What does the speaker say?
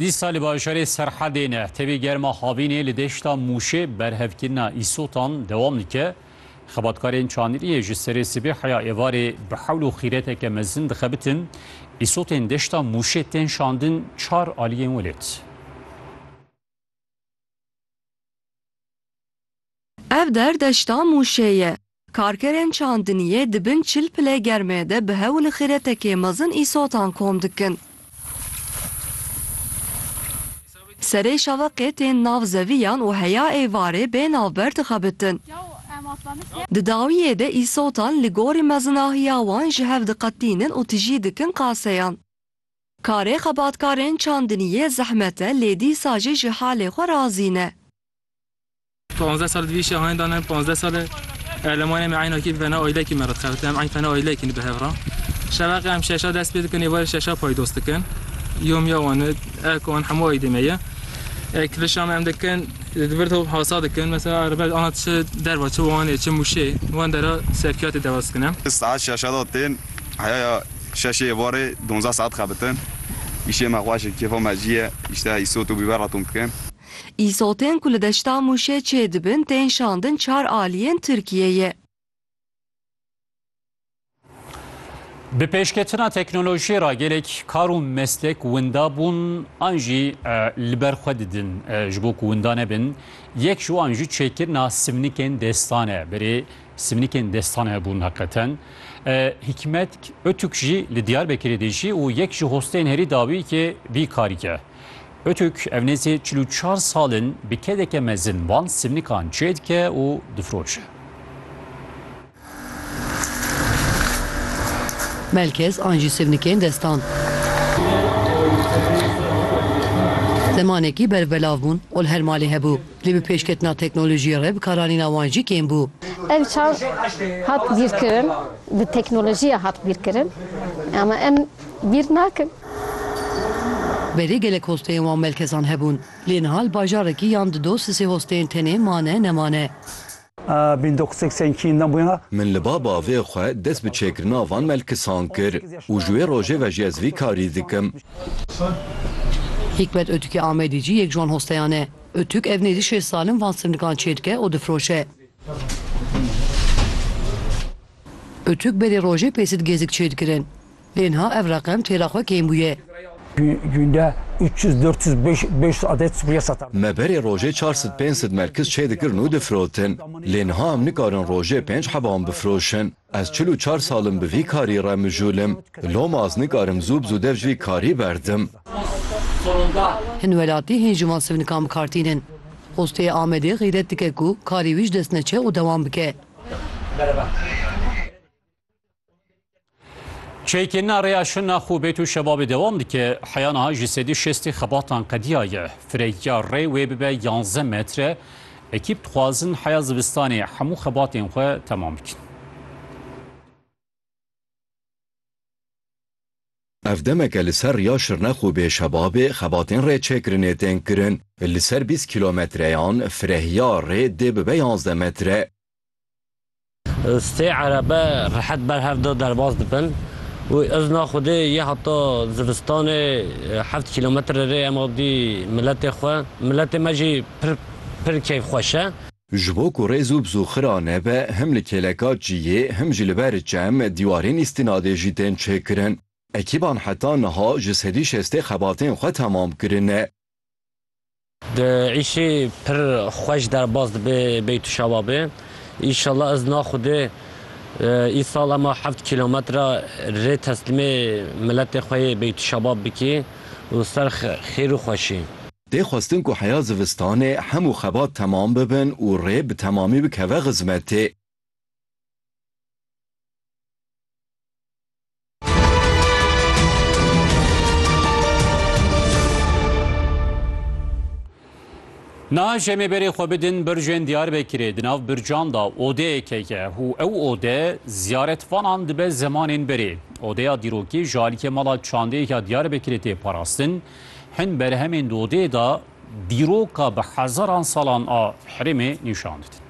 Dîsa li bajarê Serhedê ne tevî germa havînê li deşta Mûşê berhevkirina îsotan dewam dike. Xebatkarên Çandiliyê ji serê sibê heya êvarê bi hewl û xîreteke mezin dixebitin. Îsotên deşta Mûşê tên şandin çar aliyên welêt. Ev der deşta Mûşê ye. Karkerên çandiniyê di bin çil pilê germê de bi hewl û xîretekê mezin îsotan kom dikin. Serê şeveqê tên nav zeviyan û heya êvarê bê navber dixebitin. Di dawiyê de îsotan li gorî mezinahiya wan ji hev diqetînin û tijî dikin qaseyan. Karê xebatkarên çandiniyê zehmet e lê dîsa jî ji halê xwe razî ne. Panzdeh sal divî îşê hanê dane, panzdeh sal e elemanê me eynakî bi vena aylekî me re dixebitin. Em eyn fena ayleyekî ne bi hev re. Şeveqê em şeşa dest pê dikin, êvarê şeşa paydos dikin. Yomiya wan e, ek wan hemû aydê me ye. E, Kilişa me em dikin, di vir top hasa dikin. Mesela erbet ana çi derva, çi wanê, çi mûşê, wan dera sevkiyatê dewas dikin em. Saet şeşa de tên, heya ya şeşê êvarê donzdeh saet dixebitin. Îşê me xweş e, kêfa me jî ye. Îşte îsot û bîber re tom dikin. Îsotên ku li deşta Mûşê çêdibin tên şandin çar aliyên Tirkiyeyê. Bi pêşketina teknolojiyê re gelek kar û meslek winda bûn an jî li ber xwe didin ji bo ku winda nebin. Yek ji wan jî çêkirina simnikên destan e. Berê simnikên destan hebûn heqeten. Hikmet Ötük jî li Diyarbekirê dijî û yek ji hostên herî dawî yekê vî karî ke. Pirtûk ev nêzî çil û çar sal in bi kedeke mezin van sivnikan çêdike û difiroşe. Melkez an jî sivnikên destan. Zemanekî berfbelav bûn ol her malê hebû. Lê bi pêşketina teknolojiyê re bikaranîna wan jî kêm bû. Ev çav hat bîrkirin, bi teknolojiya hat bîrkirin ama em bîr nakin. Berê gelek hosteyên wan melkezan hebûn. Lê niha li bajarekî yan di dosisê hosteyên tenê mane nemane. Min li ba bavê xwe dest bi çêkirina van melkisan kir û ji wê rojê ve jî ez vî karî dikim. Hîkmet Ötükê Amedî jî yek ji wan hosteyan e. Ötük ev nêzî şêst sal in van sivnikan çê dike û difiroşe. Ötük berê rojê pêsit gêzik çê dikirin. Lê niha ev reqem çêra xwe kêm bûye. Günde üç yüz, dört yüz, beş yüz adet subriye satardık. Me berê rojê çar sed, pênc sed merkiz çê dikirin û difirotin. Lê niha em nikarin rojê pênc heba wan bifiroşin. Ez çil û çar sal im bi vî karî re mijûl im. Loma ez nikarim zû bi zû dev ji vî karî berdim. Hin welatî hîn ji wan sivnikan bi kar tînin. Xwesteyê Amedê xîret dike ku karê wî ji dest neçe û dewam bike. Çêkirina rêya şina xû bêt û şebabê dewam dike. Heya niha ji sedî şestî xebatan qediya ye. Firehîya rê wê bibe yanze metre. Ekîp dixwazin heya zivistanê hemû xebatên xwe temam bikin. Ev demeke li ser rêya şirna xû bê şebabê xebatên rê çêkirinê tên kirin. Li ser bîst kîlometreyan firehîya rê dê bibe yanze metre. Sê erebe rehet ber hev de derbas dibin û izna Xwedê yê heta zivistanê heft kîlometre rê em avdî miletê xwe. Miletê me jî pir pir keyfxweş e. Ji bo ku rêz û bizûxira nebe him li kêleka ciyê him jî li ber çem dîwarên îstînadê jî tên çêkirin. Ekîban heta niha ji sedî şestê xebatên xwe temam kirine. Di îşê pir xweş derbas dibe Beytû Şababê. Înşallah ez na Xwedê îsal ema heft kîlometre rê teslîmê miletê xwe yê Beytû Şabab bikî û ser xêr û xweşî. Tê xwestin ku heya zivistanê hemû xebat temam bibin û rê bi temamî bikeve xizmetê. Niha şemê berê xwe bidin bircên Diyarbekirê di nav bircan da odeyeke ye û ew ode ziyaretvanan dibe zemanên berê. Odeya dîrokî ji alîkê mala çandeyeke Diyarbekirê tê parastin. Hin berhemên di odeyê de dîroka bi hezaran salan a herêmê nîşan didin.